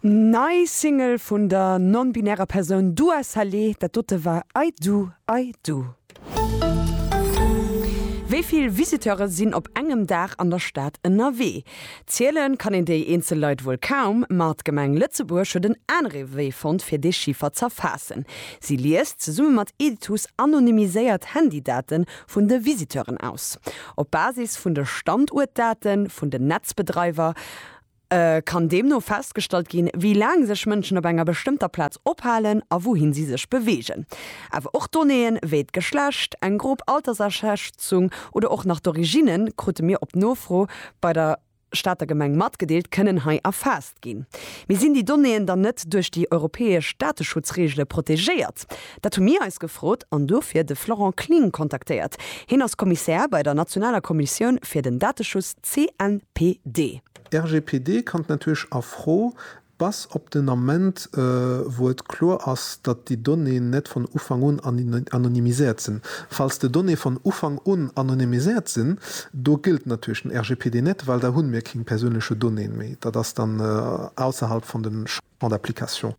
Nei Single vun der non-binärer Persoun Dua Saleh, dat dote war I Do, I Do. Wéi vill Visiteure sinn op engem Dag an der Stad ënnerwee? Zielen kann een déi eenzel Leit wuel kaum, ma d'Gemeng Lëtzebuerg huet en anere Wee fonnt, fir dee Chiffer z'erfaassen. Si liest zesumme mat Editus anonymiséiert Handydate vun de Visiteuren aus. Op Basis vun de Standuertdate vun den Netzbedreiwer Et kann deemno festgestallt ginn, wéi laang sech Mënschen op enger bestëmmter Plaz ophalen a wouhin si sech beweegen. Awer och Donnéeë wéi d'Geschlecht, eng grob Altersaschätzung oder och nach d'Originne, krute mir op Nofro bei der Stater Gemeng matgedeelt, kënnen hei erfaasst ginn. Mee sinn déi Donnéeën dann net duerch déi europäesch Dateschutzreegele protegéiert? Dat hu mir eis gefrot an dofir de Florent Kling kontaktéiert. Hien ass Kommissär bei der nationaler Kommissioun fir den Dateschutz. CNPD. RGPD kann d'Natur-sch a Fro, bass op den Ament wou et kloer ass datt déi Donnéeën net von Ufank un anonymiséiert sinn. Falls de Donnéeë von Ufank un anonymiséiert sinn, do gëllt d'Natur-sch den RGPD net, well da hunn mir kéng persounleche Donnéeën méi. Datt ass dann ausserhalb von den Champ d'application.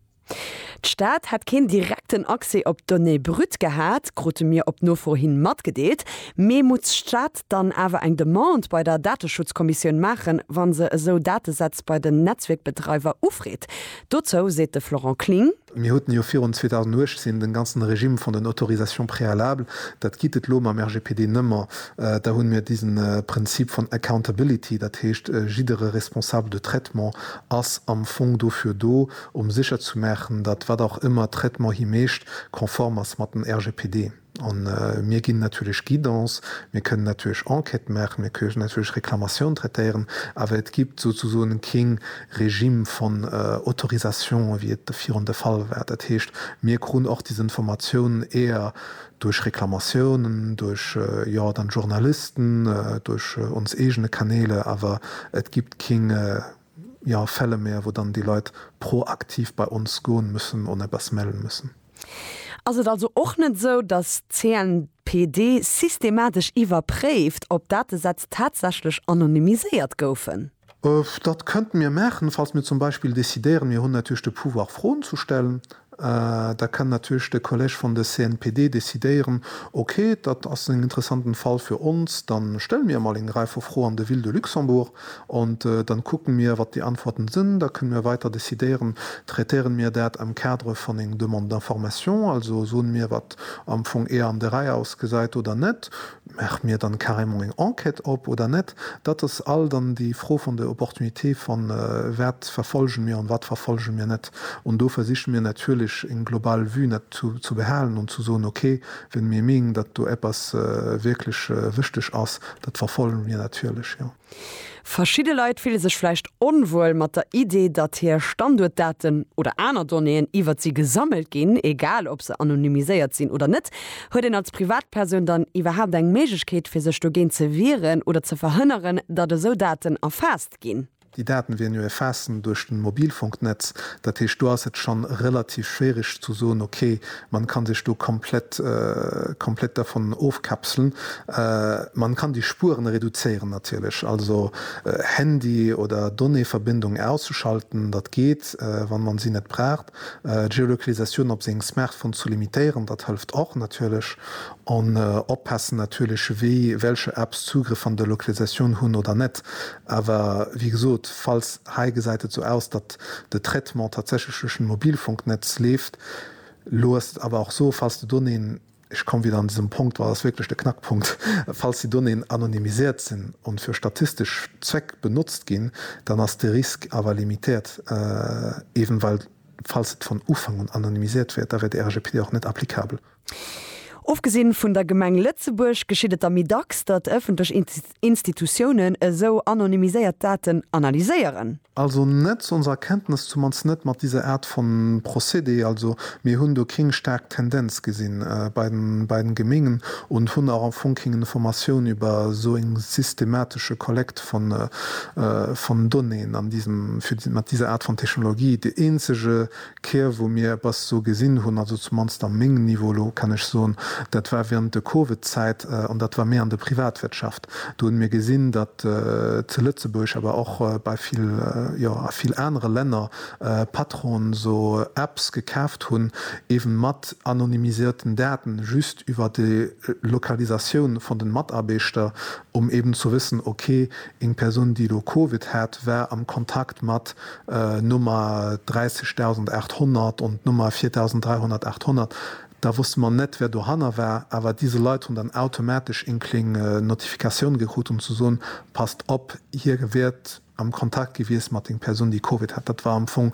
D'Stad hätt keen direkten Accès op d'Donnée brute gehat, krute mir op Nofro hin matgedeelt. Mee muss d'Stad dann awer eng Demande bei der Dateschutzkommissioun maachen, wa se esou Datesätz bei den Netzwierkbedreiwer ufreet? Dozou seet de Florent Kling. Mir huten jo virun 2018 den ganzen Régime vun den Autorisations préalables. Dat gitt et lo mam RGPD nëmmer. Da hunn mir disen Prinzip vun Accountability, dat heescht jiddere Responsable de traitement ass am Fong dofir do, um sécher zu maachen, datt wat och ëmmer Traitement hie mécht, konform ass mat den RGPD. A mir ginn natierlech Guidance, mir kënnen natierlech Enquête maachen, mir kënnen natierlech Reklamatioun traitéieren, awer et gibt souzesoen kee Régime von Autorisation, wéi et de virun de Fall war. Dat heescht, mir krun och des Informatioun eher duerch Reklamatiounen, duerch, jo, dann Journalisten, duerch ons eegene Kanäle, awer et gibt kee. jo Fälle méi a wou dann déi Leit proaktiv bei ons goen müssen an eppes mellen müssen. Ass et also och net esou, dass d'CNPD systematesch iwwerpréift, ob Datesätz tatsächlech anonymiséiert goufen? Dat könnten mir maachen, falls mir zum Beispill decidéieren, mir hunn natierlech de Pouvoir, Froen ze stellen, Da kann natierlech de Kolleg vun de CNPD decidéieren, Ok, dat ass en interessanten Fall fir ons, da stelle mir emol eng Rei vu Fro an de Ville de Luxembourg an da kucke mir, wat déi Antworten sinn. Da kënne mir weider decidéieren, traitéieren mir dat am Cadre vun eng Demande d'information, also soen mir, wat am Fong eher an de Rei ausgesäit oder net. Maache mir dann carrément eng Enquête op oder net? Dat ass all dann déi Fro von der Opportunité von wat verfolgen mir und wat verfolgen mir net. Und do versichen mir natürlich eng global Vue net zu behalen und zu soen, okay, wenn mir meengen, datt do eppes wirklich wichteg ass, datt verfolgen mir natürlich, jo. Verschidde Leit fille sech vläicht onwuel mat der Idee, datt hir Standuertdaten oder aner Donnéeën iwwert si gesammelt ginn, egal ob se anonymiséiert sinn oder net. Huet een als Privatpersoun dann iwwerhaapt eng Méiglechkeet, fir sech dogéint ze wieren oder ze verhënneren, datt esou Daten erfaasst ginn? Déi Daten wieren jo erfaassen duerch den Mobilfunknetz. Dat heescht, do ass et schonn relativ schwierig ze soen, okay, Man kann sech do komplett komplett dervun ofkapselen. Man kann déi Spueren reduzéieren natierlech, also Handy oder Donnéeverbindung auszuschalten, dat geet, wann man si net braucht. D'Geolokalisatioun op sengem Smartphone zu limitéieren, dat hëlft och natierlech. An oppassen natierlech wéi welcher Apps Zugriff an der Lokalisatioun hunn oder net. Awer wéi gesot, falls, hei gesäit et sou aus, datt de Traitement tatsächlech duerch den Mobilfunknetz leeft, Elo ass et awer och esou, falls de Donnéeën, ech komme wieder an dësem Punkt, well dat ass wierklech de Knackpunkt, falls déi Donnéeën anonymisiert sinn an fir statistesch Zweck benotzt ginn, dann ass de Risque awer limitéiert, eben well, falls et von Ufank un anonymisiert wier, da wär de RGPD och net applicabel. Ofgesinn vun der Gemeng Lëtzebuerg geschitt et der méi dacks, datt ëffentlech Institutiounen esou anonymiséiert Daten analyséieren. Also net zu onser Kenntnes, zumannst net mat diser Art von Procédé. Also mir hunn do kéng staark Tendenz gesinn bei den Gemengen und hunn auch am Fong kéng Informatioun über esou eng systematische Kollekt von Donnéen an diesem, mat diser Art von Technologie. Dee eenzege D'Kierw, wou mir eppes esou gesinn hunn, also zumannst am mengem Niveau elo, kann ech soen, dat war während de Covid-Zäit, an dat war méi an der Privatwirtschaft. Do hunn mir gesinn, datt zu Lëtzebuerg, awer och bei vill, jo, a vill anere Länner, Patronen esou Apps gekaaft hunn, eeben mat anonymisierten Daten, just iwwer déi Lokalisatioun vun den Mataarbeeschter, um eeben zu wëssen, ok, Eng Persoun, déi elo Covid hat, war am Kontakt mat Nummer 30800 und Nummer 430800. Da wosste mer net, wär dohanner war, awer dise Leit hunn dann automatesch eng kléng Notifikatioun gekrut, um ze soen, Passt op, hie wier am Kontakt gewiescht mat enger Persoun, déi Covid hat. Dat war am Fong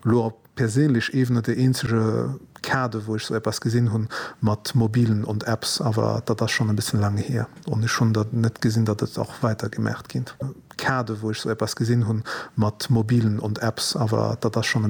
elo op Perséinlech ewen et ee eenzege Kader wou ech sou eppes gesin hun mat mobilen und Apps, awer datt ass schon en bessen lang heer und ech hun datt net gesin datt et och weiter gemaacht gin Kader wou ech sou eppes gesin hun mat mobilen und Apps, awer datt ass schon en